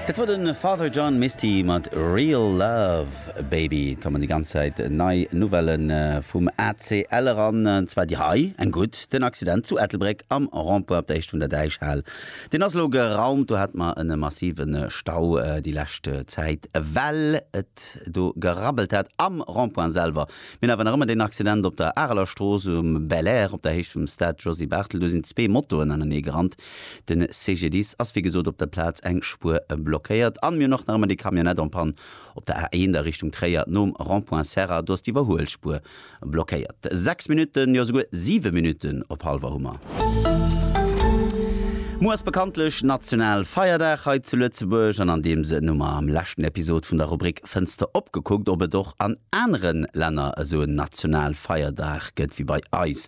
Dat war de Father John Misty mat Real Love Baby. Et kommen déi ganz Zäit nei Nouvelle vum ACL eran, an zwar déi hei, eng gutt, Den Accident zu Ettelbréck am Rond-point op der Esch vun der Däichhal, deen ass elo geraumt. Do hate mer e massive Stau déi lescht Zäit, well et do gerabbelt hat am Rond-point selwer. Mir hunn awer nach ëmmer deen Accident op der Areler Strooss um Belair op der Héicht vum Stade Josy Barthel. Do sinn zwee Motoen aneneegerannt, Den CGDIS ass wéi gesot op der Plaz eng Spuer blockéiert an mir hunn och nach ëmmer déi Camionnette en panne op der A1 a Richtung Tréier nom Rond-point Serra. Do ass d'Iwwerhuelspuer blockéiert. 6 Minutten, jo esouguer 7 Minutten op Halver hu mer. Muer ass bekanntlech national Feierdag hei zu Lëtzebuerg an an deem Sënn hu mer am leschten Episod vun der Rubrik Fënster op gekuckt ob et och an anere Länner esou en national Feierdag gëtt wéi bei eis.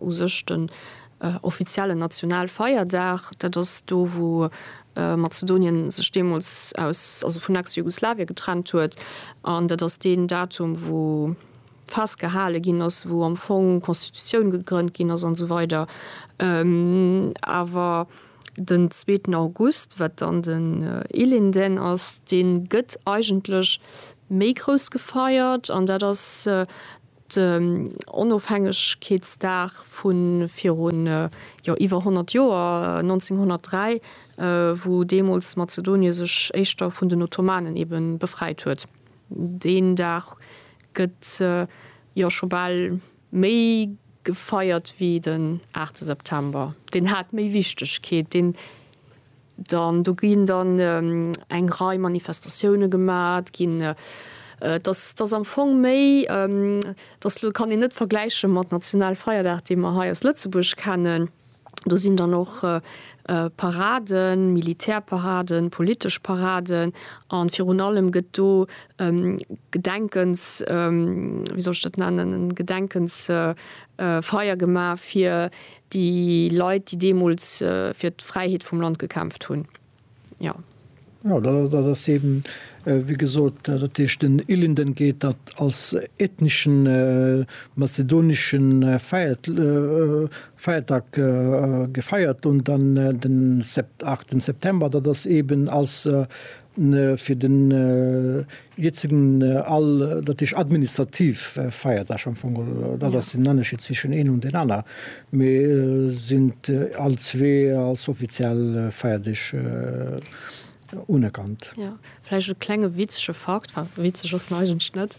u sech den offiziellen Nationalfeierdag. Dat ass do wou Mazedonien sech deemools aus, also vun Ex-Jugoslawien getrennt huet. An dat ass deen Datum wou festgehale ginn ass, wou am Fong d'Constitutioun gegrënnt ginn ass an esou weider. Awer den zweeten August, wat dann den Illinden ass, dee gëtt eigentlech méi grouss gefeiert. An dat ass Den Onofhängegkeetsdag vu virun iwwer 100 Joer, 1903, wou deemools Mazedonie sech éischter vun den Ottomanen ebe befreit huet. Deen Dag gëtt jo scho bal méi gefeiert wéi den 8 September. Deen hat méi Wichtegkeet. Dann do ginn dann eng Rei Manifestatioune gemat ginn. Et ass am Fong méi, dass elo kann een net vergläiche mat Nationalfeierdag, dee mer hei aus Lëtzebuerg kennen. Do sinn dann och Paraden, Militärparaden, politesch Paraden a virun allem gëtt do Gedenkens, wéi soll ech dat nennen, en Gedenkensfeier gemaach fir Déi Leit, déi deemools fir d'Fräiheet vum Land gekämpft hunn. Jo. Jo, dat ass, dat ass eeben, wéi gesot, dat heescht, den Ilinden geet dat als ethneschen mazedonesche Feiert, Feiertag gefeiert un, dann den Sept. 8 September, dat ass eeben als fir den jëtzegen all, dat heescht administrativ Feierdag am Fong, dat ass den Ennerscheed zwischen een an deen aner, mee sinn all zwee als offiziell Feierdeeg unerkannt. Jo, vläicht e klenge witzege Fakt, enfin witzeg ass en eigentlech net,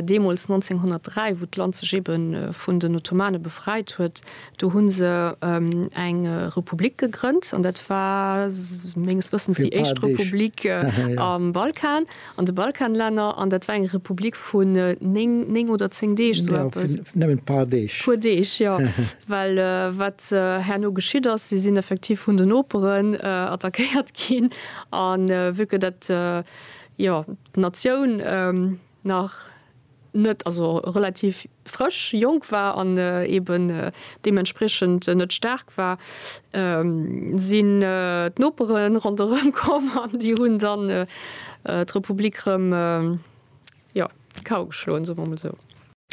deemools 1903, wou d'Land sech eebe vun den Ottomane befreit huet, Do hunn se eng Republik gegrënnt an dat war menges Wëssens déi éischt Republik am Balkan, an de Balkanlänner, an dat war eng Republik vun néng, néng oder zéng Deeg, sou eppes. Nëmmen d'paar Deeg. Puer Deeg, jo. Well wat herno geschitt ass, si sinn effektiv vun den Noperen attackéiert ginn, a vu que dat, jo, d'Natioun nach, net, also relativ frësch, jonk war an eben deementspriechend net staark war, sinn d'Nopere ronderëm komm an déi hunn dann d'Republik rëm, jo, d'Kau geschloen, soe mer emol esou.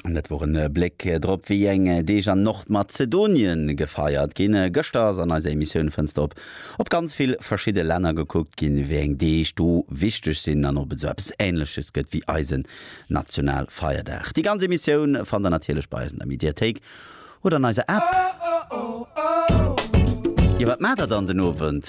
An dat wor en Bléck drop, wéi eng Deeg an Nordmazedonien gefeiert ginn. Gëschter ass an eiser Emissioun Fënster op op ganz vill verschidde Länner gekuckt ginn, wéi eng Deeg do wichteg sinn an ob et esou eppes Ähnleches gëtt wéi eisen Nationalfeierdag. Déi ganz Emissioun fannt der natierlech bei eis an der Mediathéik oder an eiser App. Jo wat maacht der dann den Owend?